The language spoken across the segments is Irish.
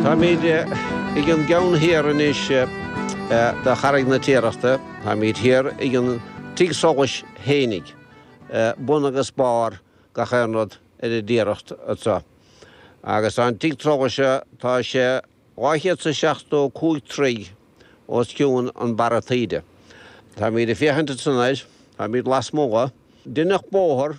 Táimid ag an gceann thiar anois de Charraig na Tiarachta. Táimid thiar ag an tigh solais fhéinig. Bun agus barr gach aon rud ar an dTiaracht anso. Agus tá an tigh solais seo tá sé dhá chéad 's a seachtó cúig troithe os cionn an barra taoide. Táimid ag féachaint ansan air. Táimid lasmuigh. Deineadh bóthar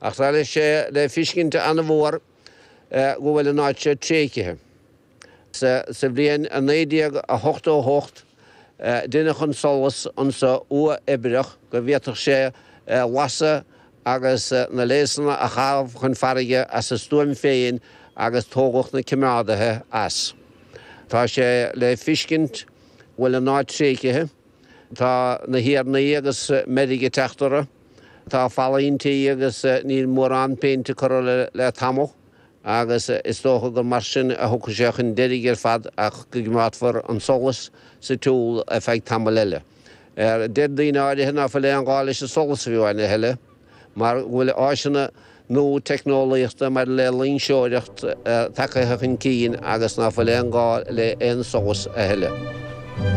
Ach tá sé le fiscint an-mhór go bhfuil an áit seo tréigthe. Sa bhliain 1988 deineadh an solas anso uathoibreach go bhféadfadh sé lasadh agus na léasanna a chaitheamh chun farraige as a stuaim féin agus tógadh na coimeádaithe as. Tá sé le fiscint go bhfuil an áit tréigthe. Tá na hiarnaí agus meirg ag teacht orthu. Tá fallaí anso agus níl mórán péinte curtha air le tamall agus is dócha gur mar sin a thiocfaidh sé chun deiridh ar fad ach go gcoimeádfar an solas sa tsiúl ar feadh tamaill eile. Deir daoine áirithe ná fuil aon ghá leis an solas a bheith ann a thuilleadh mar go bhfuil áiseanna nua teicneolaíochta maidir le loingseoireacht tagtha chun cinn agus ná fuil aon ghá le aon solas a thuilleadh.